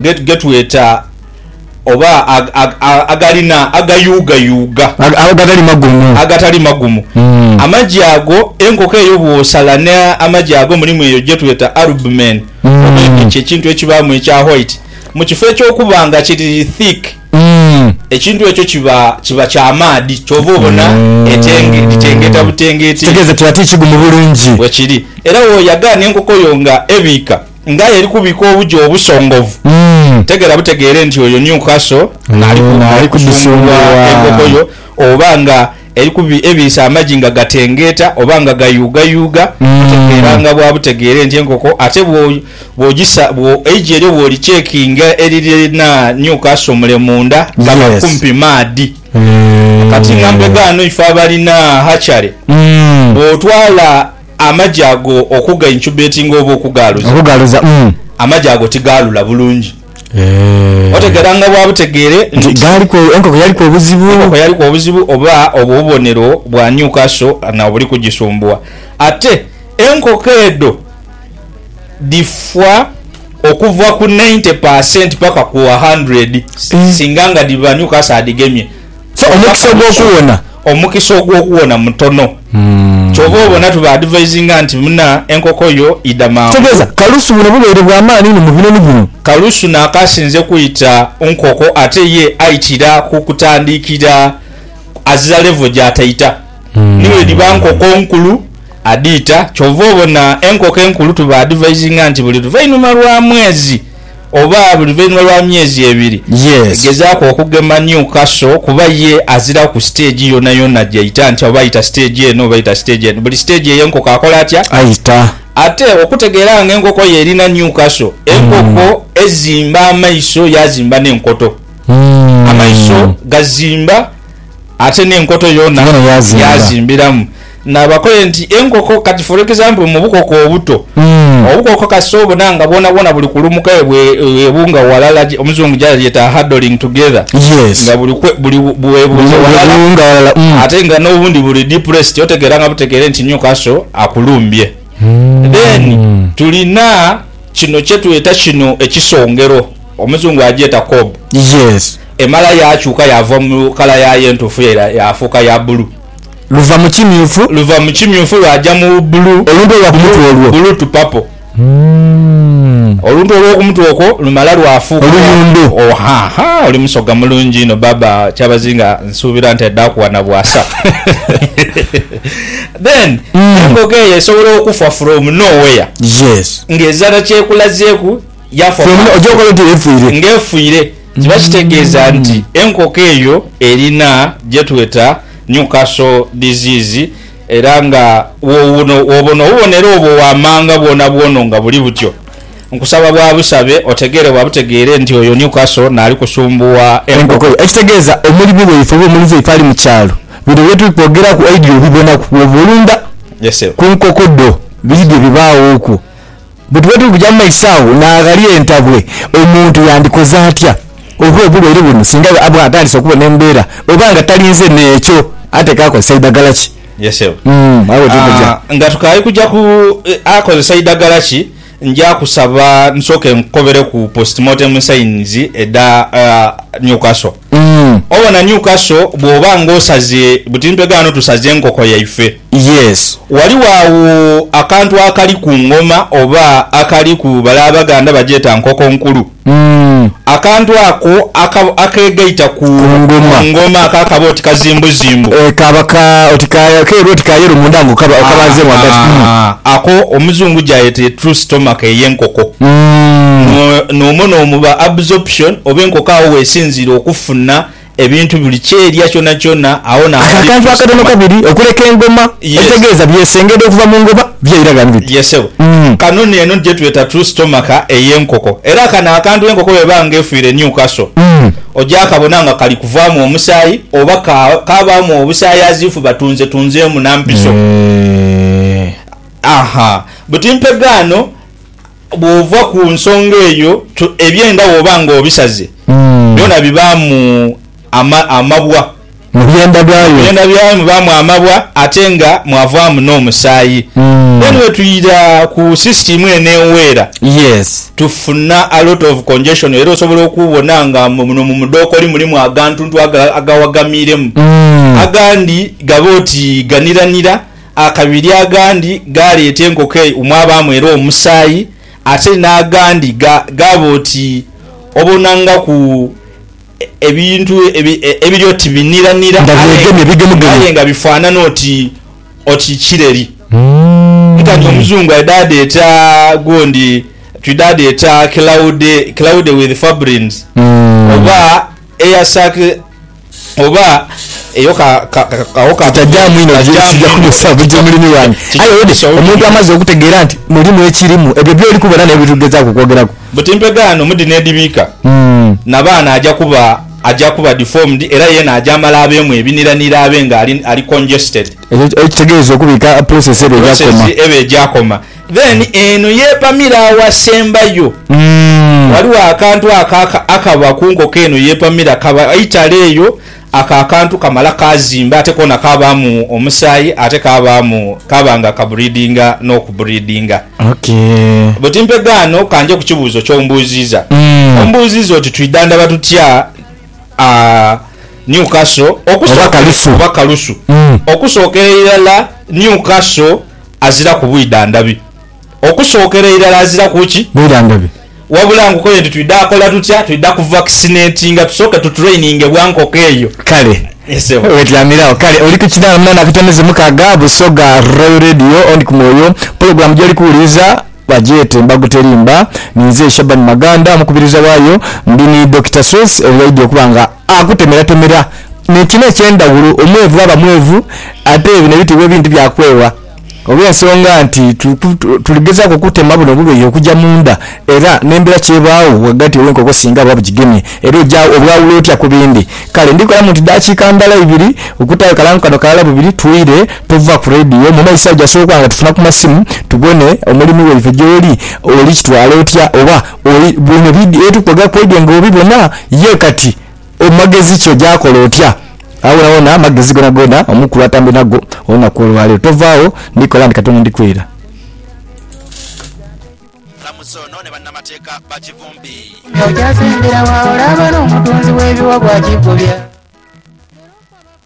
ge tweta oba agalina agayuugayuuga. Agatali magumu. Agatali magumu. Amagi ago, enkoko eyo bw'osala n'amagi ago mulimu eyo gye tweta albumen oba endhoki, ekintu ekibaamu ekya white. Mu kifo eky'okuba nga kiri thick, ekintu ekyo kiba kiba kya maadhi kyova obona litengeta butengeti. Kitegeeza kira ti kigumu bulungi. Bwekiri. Era woyaga n'enkoko yo nga ebiika. Ng'aye ali kubika obuja obusongovu, tegera butegeere nti oyo Newcastle ali kudhusungulwa enkoko yo oba nga ebiisa amagi nga gatengeeta oba nga gayuugayuuga. Butegeera nga bwa butegeere nti enkoko ate eigi eryo bw'olichekinga eririna Newcastle mule munda gaba kumpi maadhi. Kati nga mbega ghano ife abalina hatchery bw'otwala. Amagi ago okuga incubatinga oba okugaaluza. Okugaaluza, umm. Amagi ago tigaalula bulungi. Eeh. Otegeera nga bwa butegeere nti. Nti gaaliku, enkoko yaliku obuzibu. Enkoko yaliku obuzibu oba obwo bubonero bwa Newcastle na obuli kugisumbuwa. Ate enkoko edho dhifa okuva ku ninety per cent paka ku a hundred singa nga dhiba Newcastle adhigemye. So, omukisa ogw'okuwona. Omukisa ogw'okuwona mutono. Kyova obona tubaadivisinga nti, Muna enkoko yo, idha mangu. Kitegeeza kalusu buno bubeere bwa maani inho mu binoni bino. Kalusu n'akasinze kwita nkoko ate ye aitira ku kutandiikira azira levo gy'ataita. Ni bwedhiba nkoko nkulu, adhiita. Kyova obona enkoko enkulu tubaadivisinga nti buli luvainhuma lwa mwezi Oba luvainhuma lwa myezi ebiri egezaaku okugema Newcastle kuba ye aziragho ku siteegi yonayona gyaita nti oba aita siteegi eno oba aita siteegi eno. Buli siteegi ey'enkoko akola atya? Aita. Ate okutegeera nga enkoko ye erina Newcastle, enkoko ezimba amaiso yaazimba n'enkoto. Amaiso gazimba. Ate n'enkoto yoona yaazimbiramu. Naabakole nti enkoko, kati for example mu bukoko obuto, obukoko kasita obona nga bwonabwona buli kulumuka bwebunga walala, omuzungu gyalyeta huddling together, nga buli bwebunze walala ate nga n'obundi buli depressed, otegeera nga butegeere nti Newcastle akulumbye. Then tulina kino kyetweta kino ekisongero. Omuzungu agyeta Cob. Yes. Emala yaakyuka yaava mu kala yaayo entuufu yaira yaafuuka ya bulu. Luva mu kimyufu. Luva mu kimyufu lwaja mu bulu. Oluntu olwa ku mutwe olwo. Bulu to purple. Oluntu olw'oku mutwe okwo lumala lwafuuka. Oluyundhu. Ohaha, oli musoga mulungi inho baaba Kyabazinga. Nsuubira nti aidha kuwa na bwasa. Then embogo eyo esobola okufa from nowhere. Yes. Ng'ezira kye ekulazeeku. yakoba nti, Ng'efuire, kiba kitegeeza nti enkoko eyo erina gye tweta Newcastle disease era nga wowuno wobona obubonero obwo waamanga bwonabwono nga buli butyo. Nkusaba bwa busabe otegeere bwa butegeere nti oyo Newcastle naali kusumbuwa enkoko yo. Ekitegeeza omulimi waife oba omulizi waife ali mu kyalo, bino bye tuli kwogeraku oidhi obibonaku bw'oba olunda ku nkoko dho, biri bye bibaawo okwo. Bwe tuba tuli kuja mu maiso agho n'aghali entabwe, omuntu yandikoze atya oba obulwaire buno singa aba atandise okuba n'embeera oba nga talinze n'ekyo atekwa akozesa idagala ki? Ye Ssebo. Umm agho tuli kuja. Ah, nga tukaali kuja ku eh, akozesa idagala ki, nja kusaba nsooke nkukobere ku postmortem signs edha ah, Newcastle. Obona Newcastle bw'oba ng'osaze buti mpegho ghano tusaze enkoko yaife. Yes. Ghaligho agho akantu akali ku ngoma oba akali ku bale Abaganda bagyeta nkoko nkulu. Akantu ako akegaita ku ngoma ako akaba oti kazimbuzimbu. Kaba ka oti ka keeru oti ka yelo munda nga okabanzeemu ghagati. Ako Omuzungu gyayeta etrue stomach ey'enkoko. N'omwo n'omuba absorption. reception oba enkoko agho wesinziira okufuna ebintu buli kyerya kyonakyona agho na Ako akantu akatono kabiri okuleka engoma ekitegeeza byesengedha okuva mu ngoba byeira ghano biti. Yes sebo. Uhmm. Kano neeno jetweta true stomaka ey'enkoko era kano akantu enkoko bweba nga efiire Newcastle ojakabona nga kali kuvaamu omusaayi oba ka kabaamu obusaayi as if batunzetunzeemu na mpiso. Eehh. Ahaa. Buti mpegaano. Bw'ova ku nsonga eyo, ebyenda bw'oba ng'obisaze byona bibaamu amabwa. Mu byenda byayo. Mu byenda byayo mubaamu amabwa ate nga mwavaamu n'omusaayi. Then bwetwidha ku system eno eweera, tufuna a lot of congestion era osobola okubona nga muno mu mudhookoli mulimu agantuntu agawagamiiremu. Agandi gaba oti ganiranira Akabiri agandi gaaleeta enkoko eyo omwabaamu era omusaayi, ate n'agandi ga, gaaba oti obonangaku ebintu ebi, ebiri oti biniranira, Nga aye byegemye nga, bigemugemu. aye nga bifaanana oti, oti kireri. Nkanti Omuzungu aidha adheeta gundi, twidha adheeta cloud, cloud with fabrins, oba air sac, oba eyo ka, ka, ka, ka, ka Tutajaamu inho bye kija kubuusa buja mulimi wange. Aye owedde, omuntu amaze okutegeera nti mulimu ekirimu, ebyo by'oli kubona n'ebyo bye tuli kugezaaku okwogeraku. Buti mpegaano mu dhino edhibiika na baana aja kuba, aja kuba deformed era yeena aja amala abeemu ebiniranira abe nga ali, ali congested. Ekyo, ekyo kitegeeza okubiika process eba egyakoma. Process eba egyakoma. Then eno yepamira awasembayo waliwo akantu ako akaba kunkoko eno yepamira kaba eitale eyo ako akantu kamala kazimba ate kona kabamu omusayi ate kabamu kaba nga kabreedinga nokubreedinga but mpegaano kanje kukibuuzo kyombuuziza ombuuziza oti twidhandhaba tutya Newcastle oba kalusu okusookera irala Newcastle aziraku bwidha ndhabi. Okusookera irala aziraku ki? Bwidha ndhabi. Wabula nkokoyo nti twidha kola tutya? Twidha kuvakisinetinga tusooke tutureyininge bwa nkoko eyo. Kale. Ye ssebo. Wetyamiragho. Kale oli ku kidaala munaana akatoneze mukaaga, Busoga Royal Radio, ondi ku mwoyo. Pulogulaamu gy'oli kuwuliriza bagyete Mbagu Terimba. Ninze Shaban Maganda omukubiriza waayo. Ndi ni Dokita Sweets oyo aidhi okuba nga akutemeratemera nekina ekyendhaghulo omwevu ghaba mwevu ate bino ebitibwa ebindi byakwewa olwensonga nti tuligezaku okutema buno obubeyi okuja mundha era nembera kyebagho ghagati wenkoko singa buba bujigemye era oja obwawula otya kubindi kale ndhikolamu nti dakika ndhala ibiri okutayo kalango kano kalala bubiri twire tuva ku radio mumaiso agho jasoboka nga tufuna kumasimu tubone omulimi waife gyoli oli kitwala otya oba Bino byetukoga kwegyo nga obibona ye kati omumagezi ki ogyakola otya awonawona amagezi gonagona omukulu atambye nago olunaku olwalero tovaawo ndikola ndi katonda ndikwera. Omulamuzi ono ne bannamateeka ba Kivumbi.